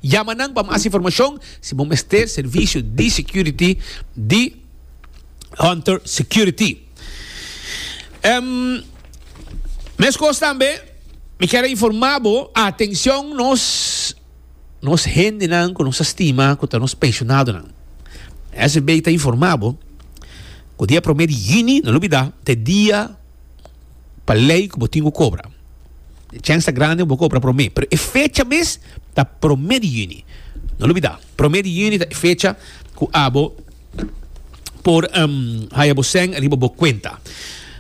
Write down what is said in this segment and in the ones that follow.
Yama nan pa mas informashon si bo mester servisio di security di Hunter Security. Mescos tambe mi kier a informa bo, atencion nos nos hendenan cu nos a stima cu ta nos pensionadonan. SVB ta informa bo cu dia prome di juni, no lo bida, ta e dia pa ley cu bo tin cu cobra. E chance ta grande pa bo cobra prome. Pero e fecha mes ta prome di juni. No lo olbida. Prome di juni ta e fecha cu abo por um, haya bo seng riba bo cuenta.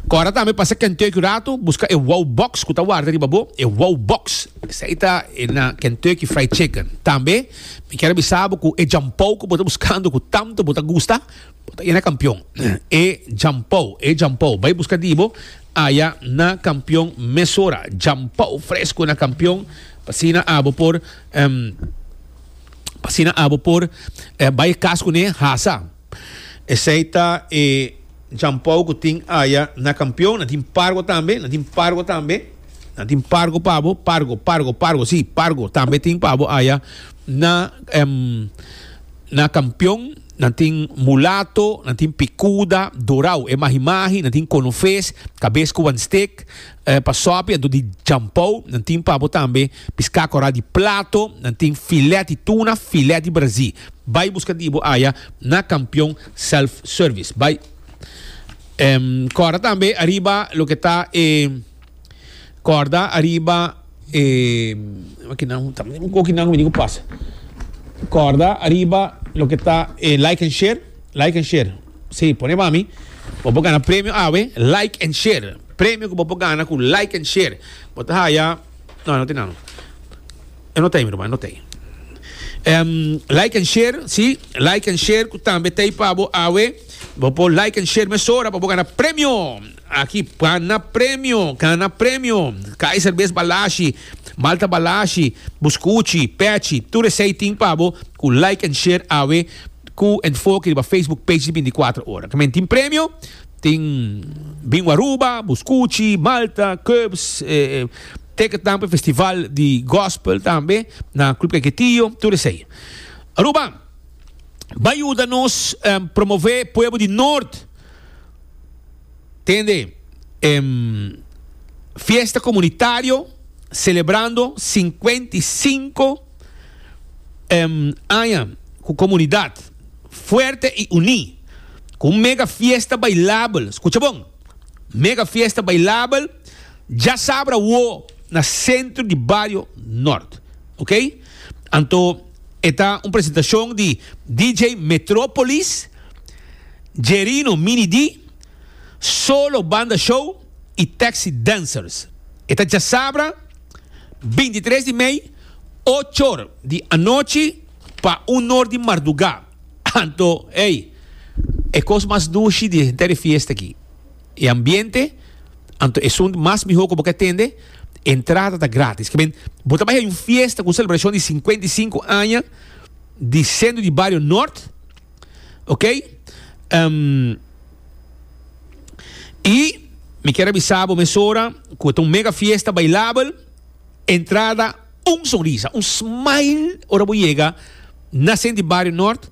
Cora tambe pasa Kentucky un rato, busca e Wow Box cu ta warda riba bo, e Wow Box. Esey ta e na Kentucky Fried Chicken. Tambe, mi kier a bisa bo cu e jampou cu bo ta buscando, cu tanto bo ta gusta, Bo ta e na kampion. E djampou, e djampou. Bai buska di bo aya na kampion mesora. Djampou fresku na kampion pasina abo por em, pasina abo por eh, bai kas kuné hasa. Esei ta e djampou ku tin aya na kampion. Nan tin pargo tambe, nan tin pargo tambe. Nan tin pargo pa bo, pargo, pargo, pargo, si, pargo tambe tin pa bo aya na em, na kampion. Nan tin mulato, nan tin pikuda, dorau, e mahi mahi, nan tin kono fes, kabes ku wan stik, eh, pa sòpi anto di jampou, nan tin pa bo tambe piskà kòrá di plato, nan tin filèt di tuna, filèt di brazí. Bai buska di bo aya na Kampion Self Service. Bai, em, kòrda tambe ariba loke ta e. Corda ariba e kinan ta un cochi nan cu mi dico pasa corda ariba loke ta e like and share like and share si pone mami bo por gana premio awe like and share premio cu bo por gana cu like and share bo ta haya no e no tin nan e no ta mi ruma e no ta em like and share si like and share cu tambe ta pabo awe bo por like and share mesora pa bo gana premio. Aki pana premio, gana premio. Kai serbes balashi, malta balashi, buskuchi, pechi, tur esei tin pa bo ku like en share awe ku enfoke riba Facebook page di binticuatro ora. Kimin tin premio? Tin Bingo Aruba, Buskuchi, Malta, Cubs, ticket nan pa e festival di gospel tambe na Club Kaiquetío, tur esei. Aruba, bai yuda nos promove pueblo di Noord. Tende em fiesta comunitario celebrando cincuenta y cinco em aña cu comunidad fuerte y uní cu un mega fiesta bailabel, scucha bon, mega fiesta bailabel djasabra awo na centro di bario Nort, ok. Anto e ta un presentacion di DJ Metropolis, Jerino Mini D, Solo Banda Show y Taxi Dancers. E ta djasabra binti tres di mei ochor di anochi pa unor di marduga. Anto ey e cos mas dushi di henter e fiesta aki. e ambiente, anto esun mas mihó ku bo ke tende. Entrada ta grátis. Ke men, bo ta bai haña un fiesta ku un selebrashon di sinkuenta i sinku aña di Sendru di Bario Nort, oke. I mi kier a bisa bo mesora ku e ta un mega fiesta bailabel. Entrada un sonrisa, un smile ora bo yega na Sendru di Bario Nort,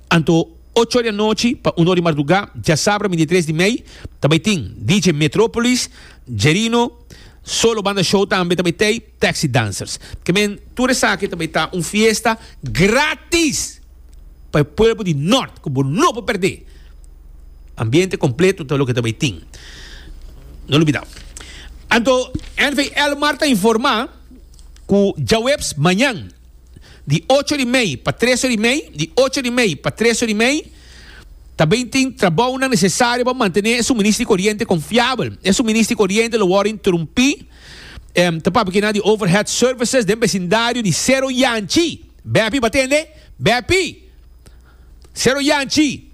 anto. Ocho di anochi pa uno di mardugá djasabra bindi tres di mei ta bai tin DJ Metropolis, Jerino, Solo Banda Show tambe ta bai tei Taxi Dancers. Kemen tur esaki ta bai ta un fiesta gratis pa e pueblo di Nort ku bo no por perdé. Ambiente kompleto ta loke ta bai tin. No lubidá. Anto NV Elmar ta informá ku djaweps mañan. Di ocho di mei pa tres or di mei, di ocho di mei pa tres or di mei, ta bin tin trabounan nesesario pa mantené e suministro di koriente konfiabel. E suministro di koriente lo wòrdu interumpí, em, ta papia kina di overhead services den besindario di Sero Yanchi. Bepi, batende? Bepi! Sero Yanchi,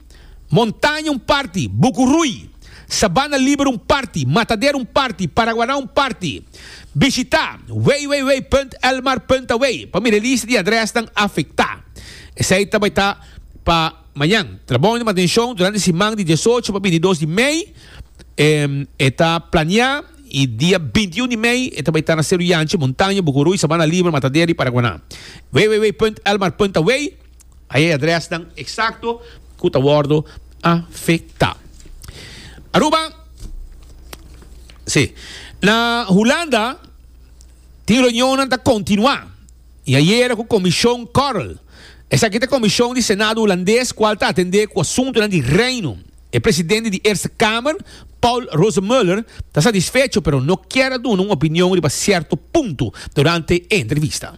Montaña un parti, Buku Rui, Sabana Liber un parti, Matadero un parti, Paraguaná un parti. Bishitá www.elmar.away pa mira e lista di adrèsnan afektá. Esei ta bai ta pa mañan. Trabounan di mantenshon durante siman di diesocho pa bintidos di mei e ta planeá i dia bintiun di mei e ta bai ta na Sero Yanchi, Montaña, Buku Rui, Sabana Liber, Matadero i Paraguaná. www.elmar.away. Ai e adresnan eksakto ku ta wòrdu afektá. Aruba, Sí. Na Hulanda tin reunionnan ta kontinuá i ayera ku Komishon Korl. Esaki ta komishon di Senado Hulandes kual ta atendé ku asuntunan di Reino. E presidente di Eerste Kamer, Paul Rosemuller, ta satisfecho pero no kier a duna un opinion riba sierto punto durante e entrevista.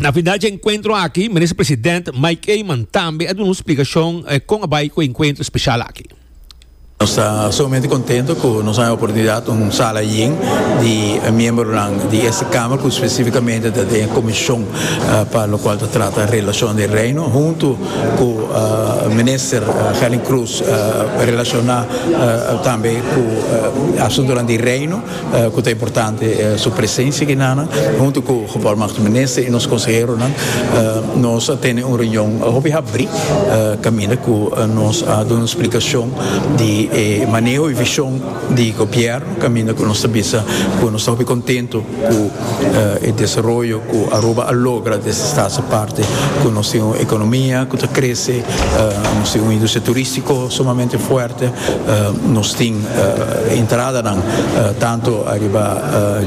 Na final dje enkuentro aki, Minister President Mike Eman tambe a duna un splikashon kon a bai ku e enkuentro speshal aki. Nos ta sumamente kontento ku nos a haña oportunidat un sala yen di miembronan di este kamer ku spesifikamente ta den e komishon pa lokual ta trata relashon di Reino huntu ku Minister Helen Cruz relashoná tambe ku asuntunan di Reino. Cu ta importante e su presencia aki nan. Hunto cu Gebarmachtigd Minister y nos conseheronan nos a tene un reunion hopi habri caminda cu nos a duna explicacion di e maneho y vision di Gobierno caminda cu nos ta bisa cu nos ta hopi contento cu e desaroyo cu Aruba a logra desde e Staats aparte cu nos tin un economia cu ta crece, nos tin un industria turistico sumamente fuerte, nos tin. entradanan tantu ariba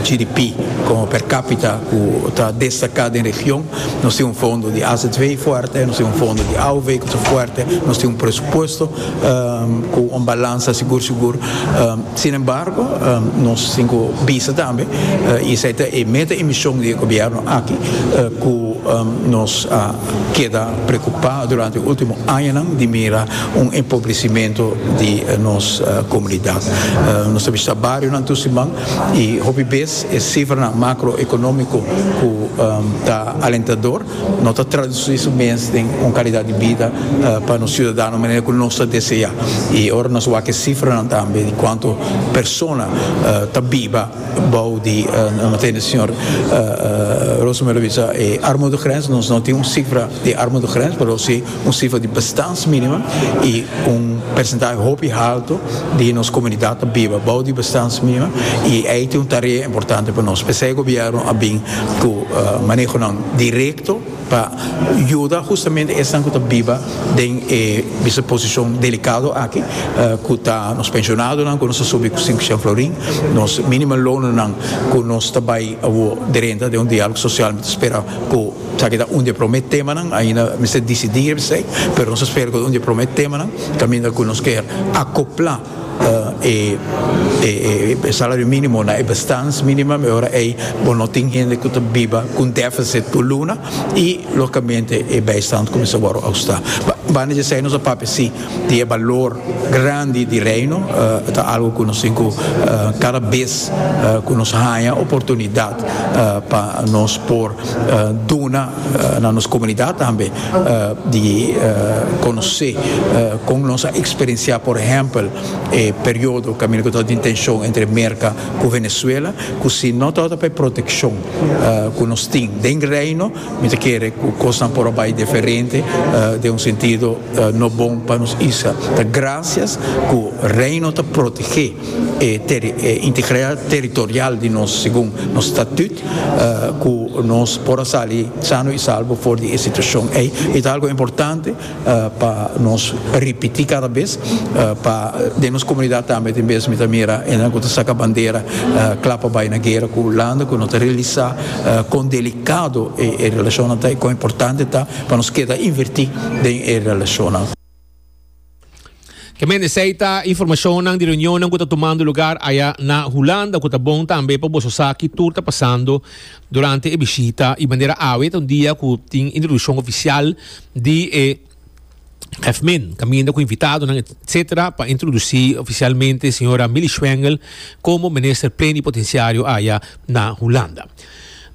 GDP como per capita cu ta destaca den region. Nos tin un fondo di AZW fuerte, nos tin un fondo di AOW cu ta fuerte, nos tin un presupuesto cu un balansa sigur sigur. Sin embargo, nos tin cu bisa tambe, y esey ta e meta y mision di e gobierno aki, cu nos a keda preocupa durante e ultimo añanan di mira un empobrecimentu di nos comunidad. Nos ta bishita barionan tur siman y hopi bes e cifranan macroeconomico cu ta alentador no ta traduci su mes den un calidad di bida pa nos ciudadanonan manera cu nos ta desea. Y ora nos wak e cifranan tambe di cuanto persona ta biba bou di, no tende di señor Rosenberg lo bisa e armudegrens, nos no tin un cifra di armudegrens pero si un sifra di bestans minimo y un percentahe hopi halto di nos comunidad ta biba bao di bestans minimo y ey ta un tarea importante pa nos. P'esey gobierno a bin cu manehonan directo pa yuda justamente esnan cu ta biba den e bisa posicion delicado aki cu ta nos pensionadonan cu nos a subi cu sinku shen florin, nos minimum loannan cu nos ta bay awo drenta den un dialogo social mi ta spera cu Esaki ta un di e prome temanan, ainda mester disidí riba esei, pero nos a spera cu ta un di e prome temanan caminda cu nos kier acopla e salario minimo na e bestans minimum, e ora ei bo no tin hende cu ta biba cu un deficit por luna y logicamente e bijstand cuminsa worde austá. Banda di esei nos a papia si di e balor grandi di Reino ta algo cu nos tin cu cada bez cu nos haya oportunidad pa nos por duna na nos comunidad tambe di conoce con nos a experiencia por ehempel e periodo caminda cu ta den tension entre Merca cu Venezuela cu si no ta ota pa e proteccion cu nos tin den Reino Mi ta kere ku kosnan por a bai diferente, den un sentido no bon pa nos isla. Ta grasias ku Reino ta protegé e integridad territorial di nos segun nos statut ku nos por a sali sano i salbo for di e situashon ei. I ta algu importante. Pa nos ripiti cada bes pa den nos comunidad tambe tin bes mi ta mira e nan cu ta saca bandera cla pa bay na guera cu landa cu no ta realisa con delicado e relacionnan ta y con importante ta pa nos keda inverti den e relacionnan. Ke men esei ta informashonnan di reunionnan ku ta tumando lugar aya na Hulanda ku ta bon tambe pa boso sa ki tur ta pasando durante e bishita i manera awe ta un dia ku tin introdushon ofisial di e FMIN kaminda ku invitadonan etsetera pa introdusí ofisialmente señora Milly Schwengel komo Minister Plenipotensiario aya na Hulanda.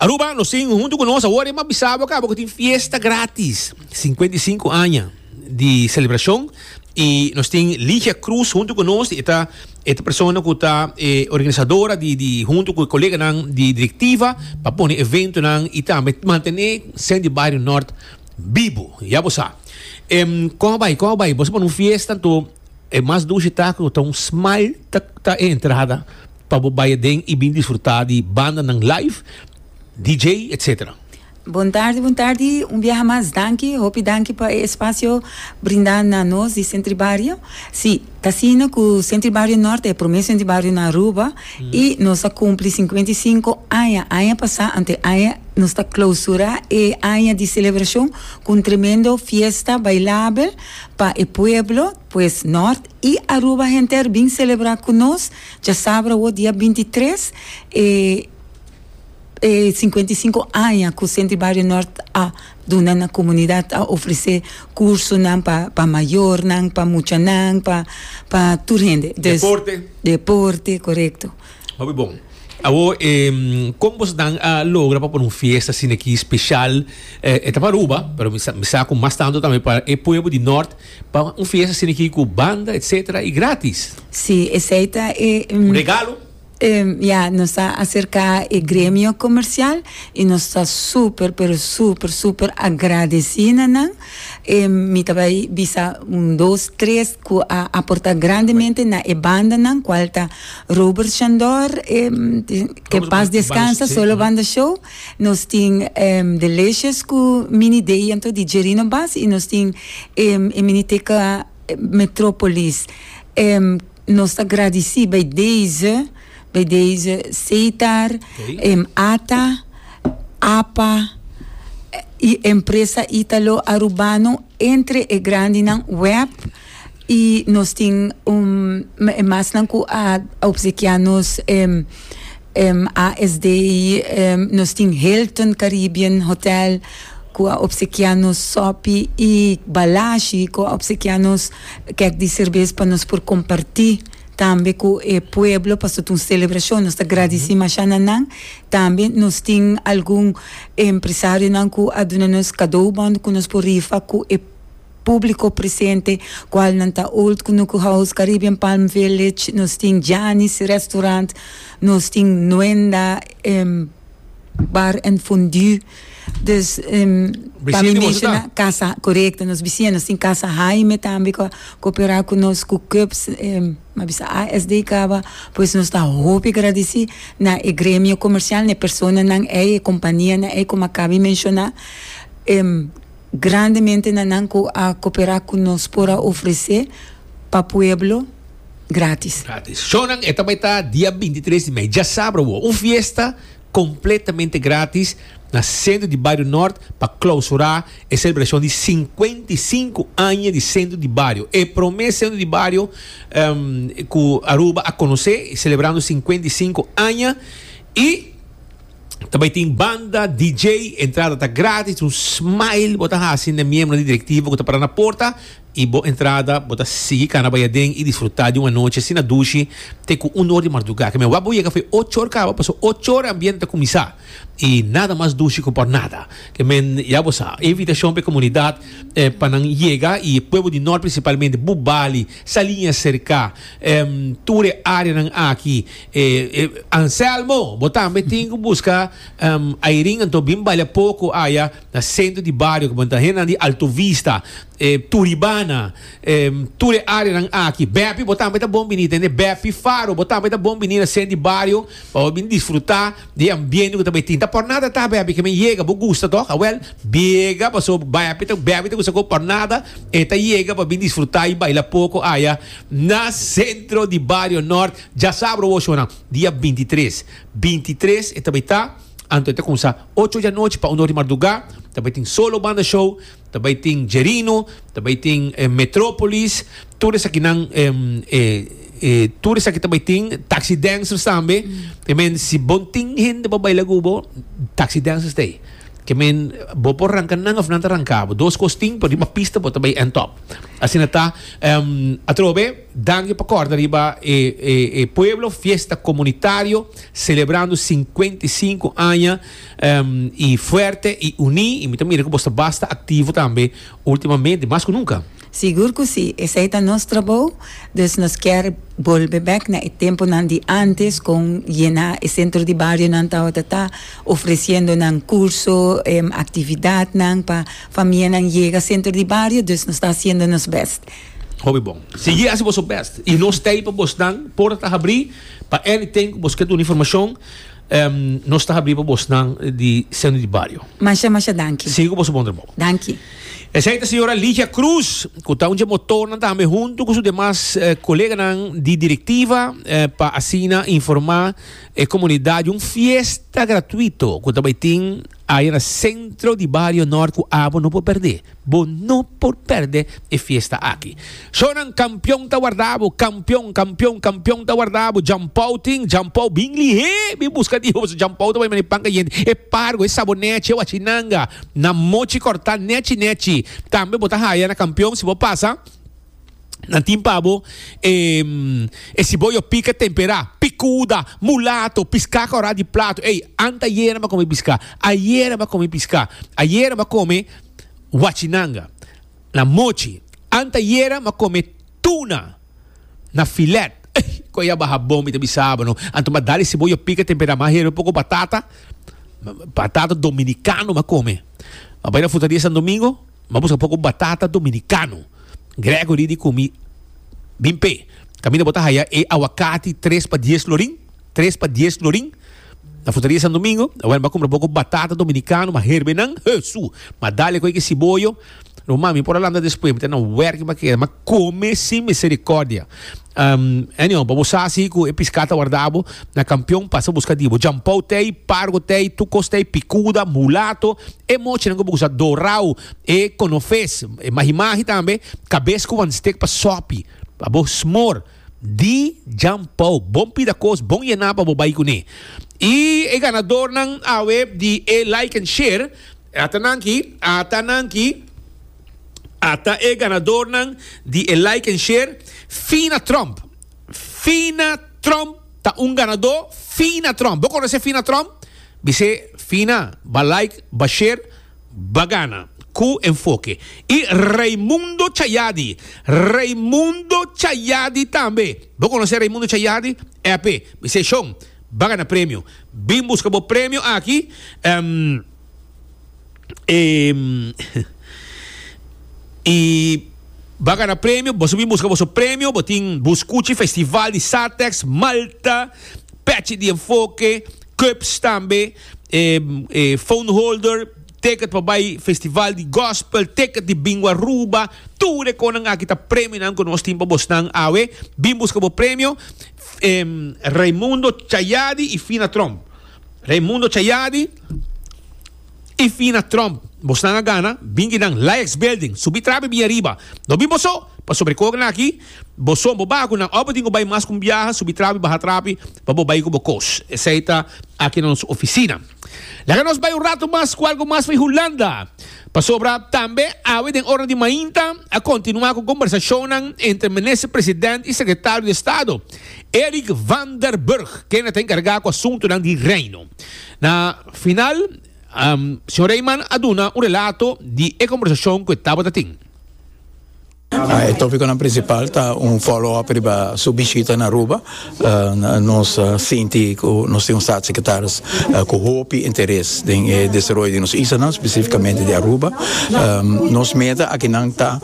Aruba, nos tin huntu ku nos awor e mabisabo kaba ku tin fiesta gratis, singkuenta i sinku aña. di celebracion y nos tin Ligia Cruz hunto cu nos e ta e persona cu ta e organisadora di di hunto cu e coleganan di directiva pa pone eventonan y tambe mantene scene di Barrio Nort bibo ya bo sa em con a bay con a bay boso pone un fiesta anto e mas dushi ta cu ta un smile ta ta e entrada pa bo bay aden y bin disfruta di bandanan live DJ etcetera. Bon tardi, bon tardi un biaha mas danki, hopi danki pa e espacio brinda na nos di Sentry Bario, si t'asina cu Sentry Bario Norte e prome Sentry Bario na Aruba y nos a cumpli cincuenta y cinco aña, aña pasa ante aña nos ta clausura e aña di celebracion cu un tremendo fiesta bailabel pa e pueblo pues Norte y Aruba henter bin celebra cu nos djasabra awor dia binti tres e E sinkuenta i sinku aña ku Sentri Bario Nort a duna na komunidat, a ofresé kursunan pa pa mayornan, pa muchanan, pa pa tur hende. Dus, Deporte. Deporte, korekto. Hopi bon. Awor, e kon boso nan a logra pa pone un fiesta asina aki speshal? E e ta pa Aruba, pero mi sa mi sa ku mas tantu tambe pa e pueblo di Nort pa un fiesta asina aki ku banda etsetera i gratis. Si, esei ta e. Un regalo. Ya nos ta acerca e gremio comercial y nos ta super pero super super agradeci na nan. Mi ta bay bisa un dos tres cu a aporta grandemente na e banda nan cual ta Robert Shandor que paz descansa solo banda show, nos tin Delicious cu Mini Dey anto di Jerino Bas y nos tin e miniteca Metropolis. Nos ta gradisí bai deze, bai deze Seitar, em ata, apa, i empresa Italo Arubano entre e grandinan web i nos tin un e masnan ku a opsekiá nos em em ASD nos tin Hilton Caribbean Hotel. cu a obsekia nos sopi y balashi cu a obsekia nos kek di cerbes pa nos por comparti tambe cu e pueblo pasobra ta un celebracion. Nos ta gradici masha na nan. Tambe nos tin algun empresarionan cu a duna nos cadoe bon cu nos por rifa cu e publico presente cual nan ta Old Kunuku House, Caribbean Palm Village, nos tin Gianni's Restaurant, nos tin Nuenda Bar and Fondue. Dus pa mi menshoná kasa, korekto, nos bisié, nos tin kasa Haime tambe ku a koperá ku nos ku KUPS, mi a bisa ASD kaba, pues nos ta hopi gradisí na e gremio komersial, na e personanan ei, e kompanianan ei, komo a kabe menshoná grandemente na nan ku a koperá ku nos por a ofresé pa pueblo grátis. Grátis. Shownan e ta bai ta dia binti tres di mei, djasabra awor, un fiesta. completamente gratis na Centro di Bario Nort pa clausura e celebracion di cincuenta y cinco aña di Centro di Bario. E prome Centro di Bario um, cu Aruba a conoce, celebrando cincuenta y cinco aña y ta bay tin banda, DJ, entrada ta gratis, un smile bo ta haci na miembro di directivo cu ta para na porta. i bo entrada bo ta sigui kana bai aden i disfrutá di un anochi asina dushi te ku un or di mardugá ke men wak bo yega fo e ocho or kaba paso ocho or ambiente ta kuminsá i nada mas dushi ku por nada ke men ya bo sa e invitashon pa e komunidat pa nan yega i e pueblo di nort prinsipalmente Bou Bali Saliña serka tur e areanan aki Anselmo bo tambe tin ku buska Ayrin anto bin balia poko aya. Na sentro di bario ku bo ta hendenan di Alto Vista, e Turibana, e tur e areanan aki. Bepi bo tambe ta bon bini tende Bepi Faro. Bo tambe ta bon bini na sent di bario pa bo bini disfruta di e ambiente ku ta bai tin. Ta pornada ta bepi ke men yega. Bo gusta tok? Awel biega paso bepi ta bepi ta gusta ku pornada e ta yega pa bini disfruta i baila poko aya na sentro di bario Nort. Djasabro woshona dia binti tres. Binti tres e ta bai ta. Anto e ta kumsa ocho di anochi pa uno di mardugá. Ta bai tin Solo Banda Show, ta bai tin Jerino, ta bai tin Metropolis, tur esakinan tur esaki ta bai tin. Taxi Dancers tambe. Ke men si bo no tin hende pa baila ku bo, Taxi Dancers ta ei. Ke men bo por ranka nan òf nan ta ranka bo. Dos kos tin, por riba pista bo ta bai èntòp. Asina ta. Atrobe. Danki pa kòrda riba e e pueblo, fiesta komunitario selebrando sinkuenta i sinku aña i fuerte i uní i mi ta mira ku bos ta basta aktivo tambe ultimamente mas ku nunka. Sigur ku si, esei ta nos trabou, dus nos kier bolbe bèk na e tempunan di antes kon yená e sentro di barionan tabata ta ofresiendo nan kurso, aktividatnan pa famianan yega sentro di bario, dus nos ta hasiendo nos bèst. Hopi bon. Sigui hasi boso best y nos ta ahi pa bos. Nan porta ta habri pa anything cu bos ke duna informacion. Nos ta habri pa bos nan di Seno di Bario. Masha masha danki. Sigui cu boso bon trabao. Danki. Esey ta señora Ligia Cruz cu ta un dje motornan tambe hunto cu su demas coleganan di directiva pa asina informa e comunidad di un fiesta gratuito cu ta bay tin Aya na centro di Bario Nort cu abo no por perde. Bo no por perde e fiesta aki. Shonan campeon ta warda abo, campeon, campeon, campeon ta warda abo. Jampou tin, Jampou bin lihé, bin busca dijo paso Jampou ta bay mane pan cayente. E pargo, e sabo nechi, e wachinanga na mochi corta nechi nechi. Tambe bo ta haya na campeon si bo pasa. nan tin pa bo e e siboyo pica tempera, picuda, mulato, pisca corá di plato. Ey, anta ayer a come pisca, ayer a come pisca, ayer a come huachinanga, na mochi, anta ayer a come tuna, na filet. Ey, cu ya baha bon mi ta bisaba no. Anto ma dale siboyo pica tempera ma hero poco batata, batata dominicano ma come. Ma bay na futa dia San Domingo. Ma buska poco batata dominicano. Gregory di cumi bin pe. Caminda bo ta haya e aguacati tres pa dies florin? Tres pa dies florin? Na frutaria San Domingo? Awel m'a cumpra poco batata dominicano, m'a herbenan, Hesu! M'a dale cu e kisiboyo. Lo mami por a landa despues, mi ta na werk, mi m'a keda, m'a come sin misericordia. Um, anyhow, pa bo sa si cu e pisca ta warda bo na campeon, pasa busca di bo. Jampou t'ei, Pargo t'ei, Tucos t'ei, Picuda, Mulato, e mochinan cu bo usa, Dorau, e Conofes, e Mahimahi tambe, Cabes cu wan steek pa sopi, pa bo smor di jampou. Bon pida cos, bon yena pa bo bay cune. Y e ganadornan awe di e like and share, ata nan aki, ata nan aki. Ata e ganadornan di e like en share fina Trump fina Trump ta un ganador fina Trump bo conoce fina Trump bisé fina ba like ba share ba gana cu enfoke y Raimundo Chayadi Raimundo Chayadi tambe bo conoce Raimundo Chayadi epe bisé shon ba gana premio bin busca bo premio aki. Em, y bo gana premio, boso bin busca boso premio, bo tin Buscuchi Festival di Satex, Malta, Patchy di Enfoke, Cups tambe, em, eh, phone holder, ticket pa bay Festival di Gospel, ticket di Bingo Aruba, tur e conan aki ta premionan cu nos tin pa bosnan awe, bin busca bo premio, em, Raimundo Chayadi y Fina Tromp. Raimundo Chayadi y Fina Tromp. Bosnan a gana, bin di nan Laex Building. Subi trabe bin ariba. No bin boso, pasobra e ku a gana aki, boso, bo baku nan òf bo tin ku bai mas ku un biaha, subi trabe, baha trabe pa bo bai ku bo kos. Esei ta aki na nos ofisina. Laga nos bai un ratu mas ku algu mas for di Hulanda, pasobra tambe awe den ora di mainta a kontinuá ku kombersashonnan entre Minister President y Sekretario di Estado. Eric van der Burg, kende ta enkargá ku asuntunan di Reino. Na final, Señor Reijman a duna un relato di e kombersashon ku e tabata tin. E tópikonan prinsipal ta un follow-up riba su bishita na Aruba. Nos sinti ku nos tin un Staatssecretaris ku hopi interes den e desaroyo di nos islanan, spesifikamente di Aruba. Nos meta akinan ta.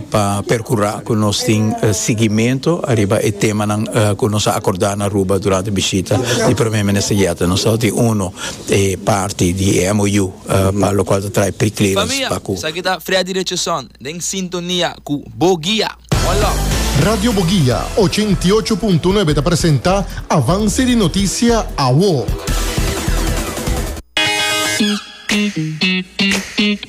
pa percura cu nos tin siguimento ariba e temanan cu nos a acorda na Aruba durante bishita di Prome Minister Jette. Nos ta oti uno e parti di e MOU pa locual ta trae pre-clearance pa cu. Esaki ta Fria Direcion den sintonia cu Boguia. One love. Radio Boguia ochenta i ocho punto nuebe ta presenta Avance di Noticia Awo.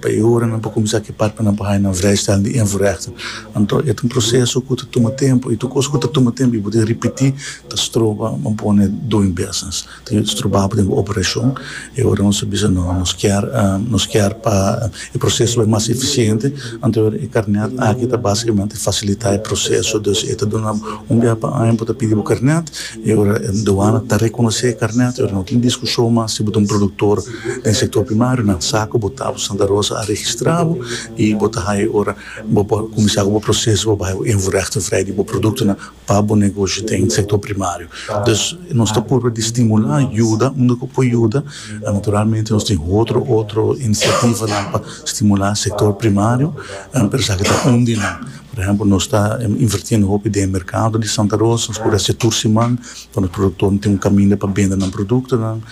Pa e ora nan por kuminsá ki partenan pa haña nan vrijstaal di invoerrechten, anto e ta un proseso ku ta tuma tempu i tur kos ku ta tuma tempu i bo tin ripití ta stroba bo pone doing business, ta yuda strobabo den bo operashon. E ora nos ta bisa no, nos kier nos kier pa e proseso bai mas efisiente, anto e ora e karnèt aki ta basikamente fasilitá e proseso. Dus e ta duna bo un biaha pa aña bo ta pidi bo karnèt. E ora duana ta rekonosé e karnèt, e ora no tin diskushon mas si bo ta un produktor den sektor primario, na sa ku bo ta bo Santa Rosa a registrá bo i bo ta haña e ora bo por kuminsá ku bo proseso pa bo haña bo invoerhechting vrij di bo produktonan pa bo negoshi den sektor primario. Dus nos ta purba di stimulá, yuda unda ku por yuda. Naturalmente nos tin otro otro inisiativanan pa stimulá sektor primario, pero esaki ta un di nan. Por ehempel, nos ta invertiendo hopi den e mercado di Santa Rosa, nos por haci tur siman pa nos productornan tin un caminda pa bende nan productonan,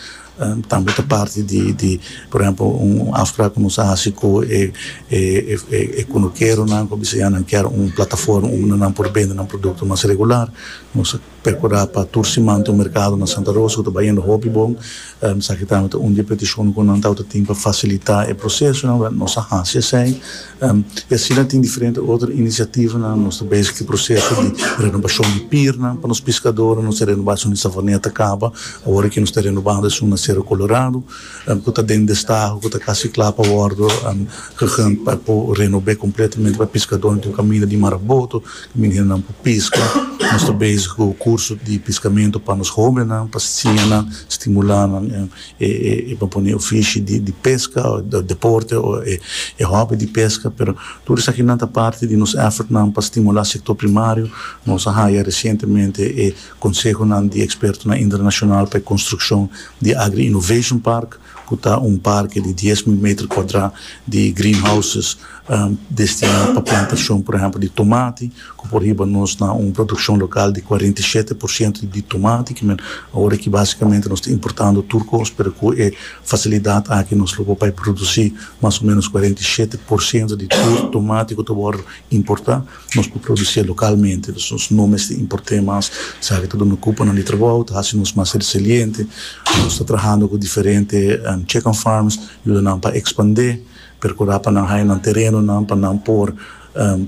tambe ta parti di, por ehempel, un afspraak cu nos a haci cu e e cunukeronan cu a bisa ya nan kier un plataforma unda nan por bende nan producto mas regular, nos a. Percurá pa tur siman ta un mercado na Santa Rosa cu ta bay hende hopi bon. Esaki tambe ta un di e peticionnan cu nan tawata tin pa facilitá e procesonan, wèl, nos a haci esei. Y asina tin diferente otro iniciativanan. Nos ta bezig cu e proceso di renobacion di pirnan pa nos piscadornan. Nos a renobá esun di Savaneta caba, awor aki nos ta renobando esun na Cerro Colorado cu ta den destaho, cu ta casi cla pa wordo, cu gen ta por renob'é completamente pa e piscadornan tin un caminda di Maraboto. Meninanan por piska. Nos ta bezig cu curso di piscamento pa nos hobennan, pa siña nan, stimula nan e papone ofishi di pesca, o deporte, o e hobby di pesca. Pero tur esakinan ta parti di nos effortnan pa stimula sector primario. Nos a haya recientemente e consehonan di expertonan internacional pa e construccion di Agri-Innovation Park. cu ta un parke di dies mil meter cuadra di greenhouses destina pa plantacion, por ehempel, di tomati, cu por hiba nos na un produccion local di cuarenta i shete por ciento di tomati, ki men awor aki basicamente nos ta importando tur cos, pero cu e facilidad aki nos lo por bai produci mas o menos cuarenta i shete por ciento di tur tomati cu ta worde importa. Nos por producié localmente, dus nos no mester importé mas. Esaki ta duna cuponan di trabou, ta haci nos mas resiliente. Nos ta trahando cu diferente chicken farms, yuda nan pa expandé, percurá pa nan haya nan terenonan pa nan por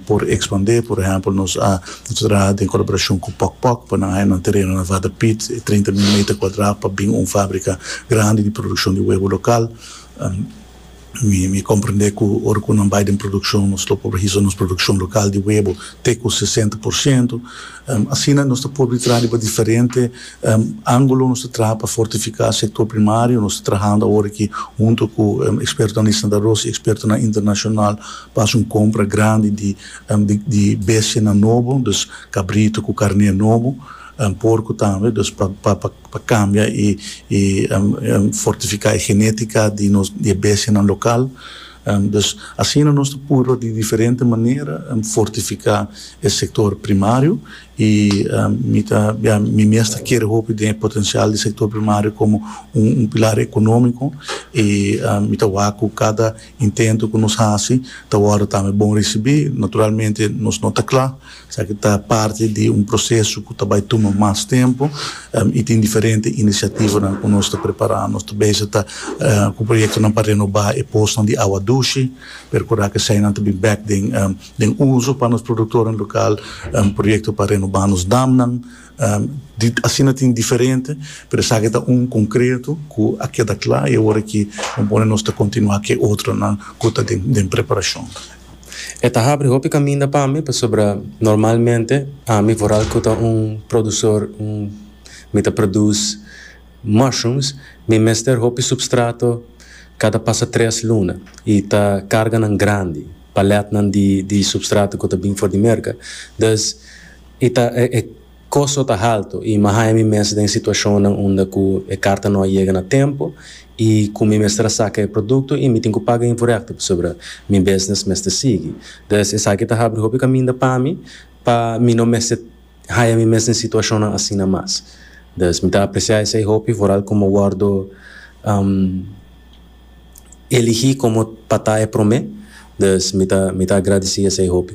por expandé. Por ehempel, nos a traha den colaboracion cu Pok Pok pa nan haya nan tereno na Waterpiet, trinta mil meter cuadra, pa bin un fabrica grandi di produccion di webo local. Mi comprende cu ora cu nan bay den produccion nos lo por hizo nos produccion local di webo te cu sesenta por ciento. Asina nos ta por di traha riba diferente angulo. Nos ta traha pa fortifica sector primario. Nos ta trahando awor aki hunto cu expertonan di Santa Rosa y expertonan internacional pa haci un compra grandi di di bestianan nobo, dus cabrito cu carne nobo, porco tambe, dus pa. pa cambia y fortifica e genetica di nos di e bestianan local, dus asina nos ta purba di diferente manera fortifica e sector primario y mi ta bia mi mes ta kere hopi den e potencial di sector primario como un pilar economico y mi ta wak cu cada intento cu nos haci ta wordo tambe bon ricibi, naturalmente nos no ta cla. Esaki ta parti di un proseso ku ta bai tuma mas tempu i tin diferente inisiativanan ku nos ta prepará. Nos ta bese ta ku proyektonan pa renobá e posnan di awa dushi, perkurá ku eseinan ta bin bèk den uso pa nos produktonan lokal, proyekto pa renobá nos damnan, i asina tin diferente, pero esaki ta un konkreto ku a keda kla i awor aki bo pone nos ta kontinuá ku e otronan ku ta den preparashon. E ta habri hopi kaminda pa mi pasobra normalmente ami foral ku ta un produsor un mi ta produs mushrooms mi mester hopi supstrato kada pasa tres luna i ta karganan grandi palètnan di di supstrato ku ta bin for di Merka, dus i ta e Kosto ta haltu i mi a haña mi mes den situashonnan unda ku e karta no a yega na tempu i ku mi mester a saka e produkto i mi tin ku paga invorekto pasobra mi bisnis mester sigui. Des esaki ta habri hopi kaminda pa mi pa mi no mester haña mi mes den situashonnan asina mas. Des mi ta apresiá esei hopi foral ku mi a wòrdu eligí komo pa ta e promé. Des mi ta mi ta agradesí esei hopi.